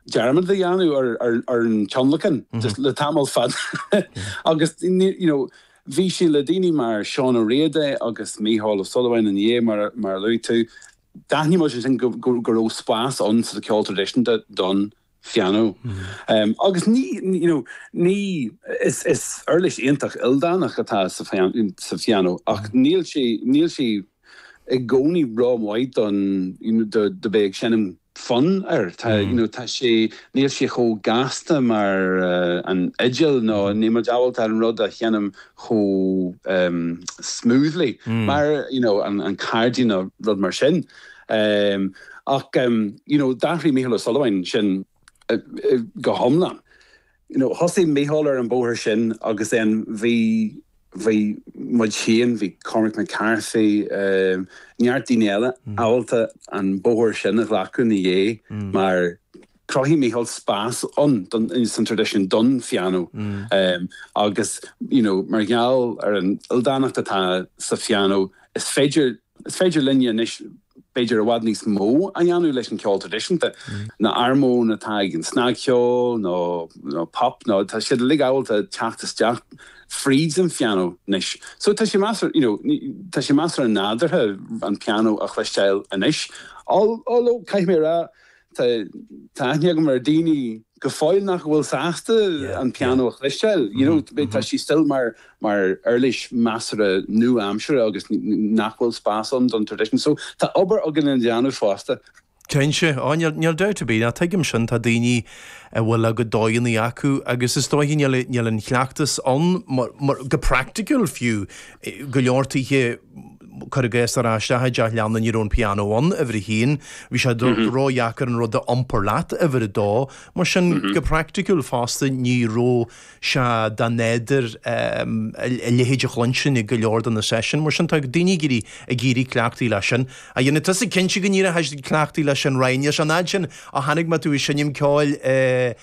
dearmad a dhéanamh ar an tionlacan le tamall fada agus you know bhí sé le daoine mar Seán Ó Riada agus Mícheál Ó Súilleabháin ina dhiaidh, mar a luaigh tú. D'aithnigh muid ansin go raibh spás ann sa cheol traidisiúnta don phianó agus you know is uirlis iontach ildánach atá sa phianó ach níl sé i gcónaí rómhaith don do bheith ag seinm fonn air. Tá you know tá sé níl sé chomh gasta mar an fhidil nó níl muid ábalta an rud a sheinm chomh smoothly mar you know an cairdín nó rud mar sin. Ach you know d'athraigh Mícheál Ó Súilleabháin sin go hiomlán. Thosaigh Mícheál ar an bhóthar sin agus bhí bhí muid féin, bhí Cormac McCarthy, neart daoine eile ábalta an bóthar sin a ghlacadh ina dhiaidh mar chruthaigh Mícheál spás ann, sa traidisiún, don phianó agus you know mar gheall ar an ildánacht atá sa phianó, is féidir Is féidir linne anois b'fhéidir i bhfad níos mó a dhéanamh leis an ceol traidisiúnta, na harmóin atá ag an snagcheol nó nó pop nó tá siad uilig ábalta teacht isteach fríd an phianó anois. So tá sé measartha you know tá sé measartha nádúrtha an pianó a chloisteáil anois although caithfidh mé a rá Tá tá aithne agam ar daoine go fóill nach bhfuil sásta an pianó a chloisteáil, you know, tá sí still mar uirlis measartha nua-aimseartha agus nach bhfuil spás ann don tradition. So tá obair againn le déanamh fosta. Cinnte. Á, níl dabht ar bith. Á, tuigim sin. Tá daoine a bhfuil a gcuid dóigheanna acu agus is dóiche níl an cleachtas ann go practical fiú i go leor tithe. cuir i gcás, ar ais istigh i dteach leanna, ní raibh an pianó ann, uimhir a haon, bhí sé ródheacair an rud a iompar leat, uimhir a dó, mar sin go praiticiúil fosta ní raibh sé nádúrtha a leithéid a chluinstin ag go leor de na seisiúin, mar sin tá daoine ag éirí ag iarraidh cleachtaí leis sin a dhéanamh. Tá sé cinnte go n-éireochaidís cleachtaí leis sin Ryan, níl sé an fhad sin ó chonaic mé tú ag seinm ceoil i.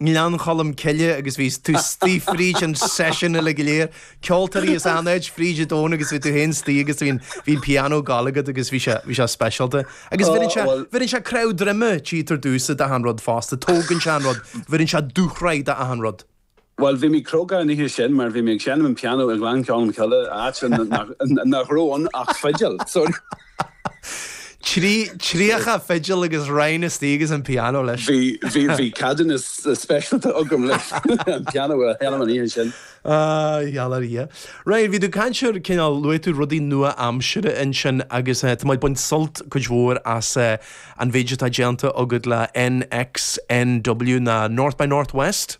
nGleann Cholm Cille agus bhí tú istigh fríd an session uilig go léir. Ceoltóirí as achan áit fríd an domhan agus bhí tú féin istigh agus bhí an, bhí an piano ag dul agat agus bhí sé, bhí sé speisialta. Agus bheireann sé, bheireann sé cnámh droma diot ar dtús do achan rud fosta, tógann sé an rud, bheireann sé dúshraith d'achan rud. Bhuel bhí mé cróga an oíche sin mar bhí mé ag seinm an piano i nGleann Cholm Cille, áit nach raibh ann ach fidil. Tríocha fidil agus roinn istigh agus an pianó leis. Bhí, bhí, bhí ceadúnas speisialta agam le an pianó a sheinm an oíche sin. Á, gheall ar Dhia. Ryan, bhí tú ag caint ar cineál, luaigh tú rudaí nua-aimseartha ansin agus tá mé ag baint sult cuid mhór as an méid atá déanta agat le NXNW nó North by Northwest.